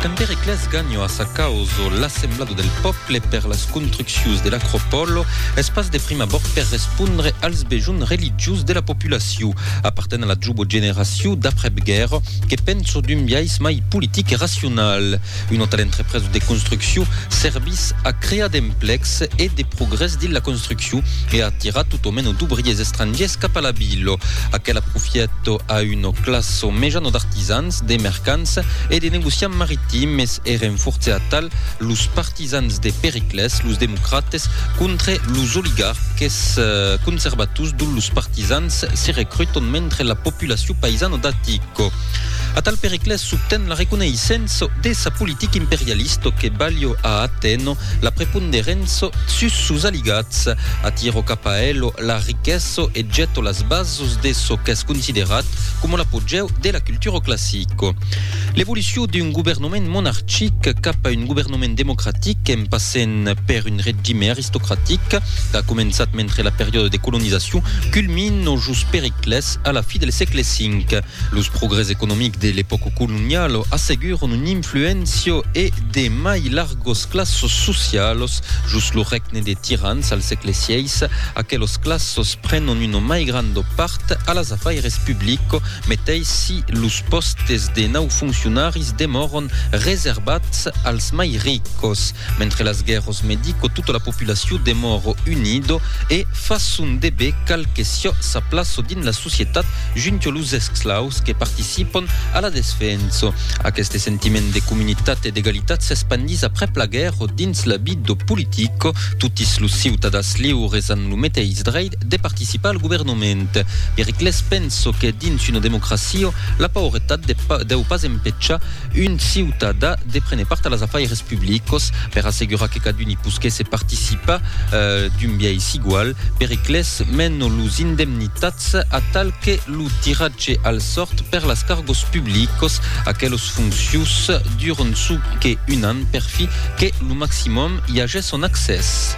Quand Periclès ganho a sa causo l'assemblado del pòple per las construccius de l'Acropòlo, es pas de prim abòrd per respondre als bejonh religiós de la populaciu. Aparten a la jubo generaciu d'aprèp guèrra que penso d'un biais mai politic e racional. Un autal entrepreso de construcciu servís a crear d'emplecs e de progrès dins la construcciu e a atirar tot o meno d'obriers estrangiers cap a la vila. Aquela profièto a un o classo mejano d'artisans, de mercants e de negociants maritimes èren fortz a tal los partisans de Periclès, los democrates, contre los oligarques conservators dont los partisans se recruton mentre la populacion paisana d'Atico. A tal Periclès s'obten la reconeissença de sa politica imperialista que balha a Atèno la preponderença sus sos aligats, atira cap a elo la riquesa e gèta las bases sus de çò qu'es considerat coma l'apogèu de la cultura classica. L'evolucion d'un governament monarchic cap a un governament democratic en passent per un regime aristocratic qu'a començat mentre la periòda de colonizacion culmin o jos Periclès a la fi del sègle V. Los progrès economics de l'epòca coloniala asseguron un influéncia e de mai largas classas socialas. Jos lo règne de tirans al sègle xvi, aquelas classas prenon una mai granda part a las afaires publicas, meteis si los pòstes de nau foncionaris demòran reservats als mai ricas. Mentre las guèrros medico tota la populacion demòro unido e fa son debé cal que siò sa plaço dins la societat junto los esclaus que participon a la desfenso. Aqueste sentiment de comunitat e d'egalitat s'espandís aprèp la guèrro dins la bido politico, totis los ciutadans liures an lo meteis dreit de participar al governament. Periclès penso que dins una democracio la pauretat deu pas empechar Un ciutadà de prene part a las afaires publicos per assegurar que cadun i posquèsse participar d'un biais igual per eqles menno los indemnitats atal que lo tiratge al sòrt per las cargos publicos aquelos foncius durant ço que un an per fi que lo maximum i ages son accès.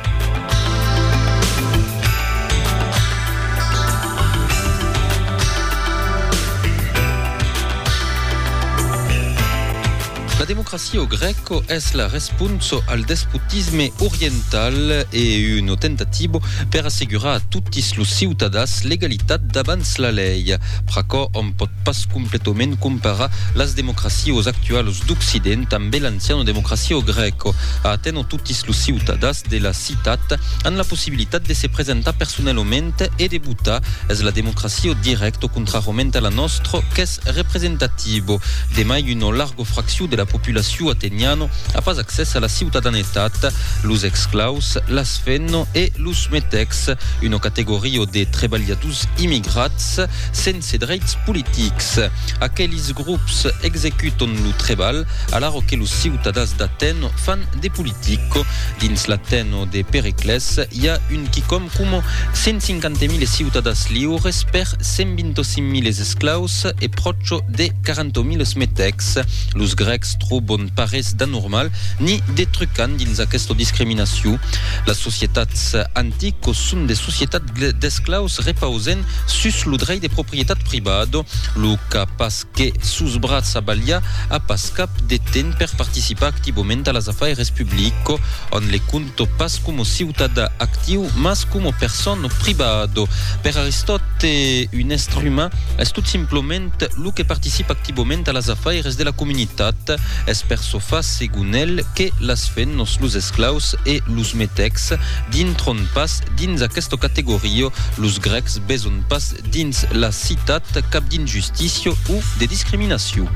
La democracia au Grèco es la responso al despotisme oriental e una tentatibo per assegurar a totis los ciutadans l'egalitat davans la lei. Pr'aquò òm pòt pas completament comparar las democracios actualos d'Occident ambe l'anciana democracia au Grèco. A Atèno totis los ciutadans de la citat an la possibilitat possibilitat de se presentar personelament e de votar, es la democracia au direct o contrarament a la nòstra qu'es representativa. Demai una larga fraccion de la populacion ateniana a pas accès a la ciutadanetat, los exclaus, las fenna e los metecs, una categoria de trebalhadors immigrats sense dreits politics. Aquelis grops executan lo trebalh alara que los ciutadans d'Atèna fan de politica. Dins l'Atèna de Pericles, i a un quicòm coma 150.000 ciutadas liures per 125.000 esclaus e pròcho de 40.000 metècs. Los grècs trobon parés d'anormal ni de trucant dins aquesta discriminacion. Las societats anticos son de societats d'esclaus repausent sus lo drei de proprietat privada, lo qu'a pas que sos bratz a balhar a pas cap de temps per participar activament a las afaires publico, ont le conto pas coma ciutadà actiu, mas coma persona privado. Per Aristòte, un èstre uman es tot simplament lo que participa activament a las afaires de la comunitat. Es per çò fa, segon el, que las fennos, los esclaus e los metècs dintron pas dins aquesta categoria. Los grècs beson pas Dins la citat, cap d'injustícia o de discriminacion.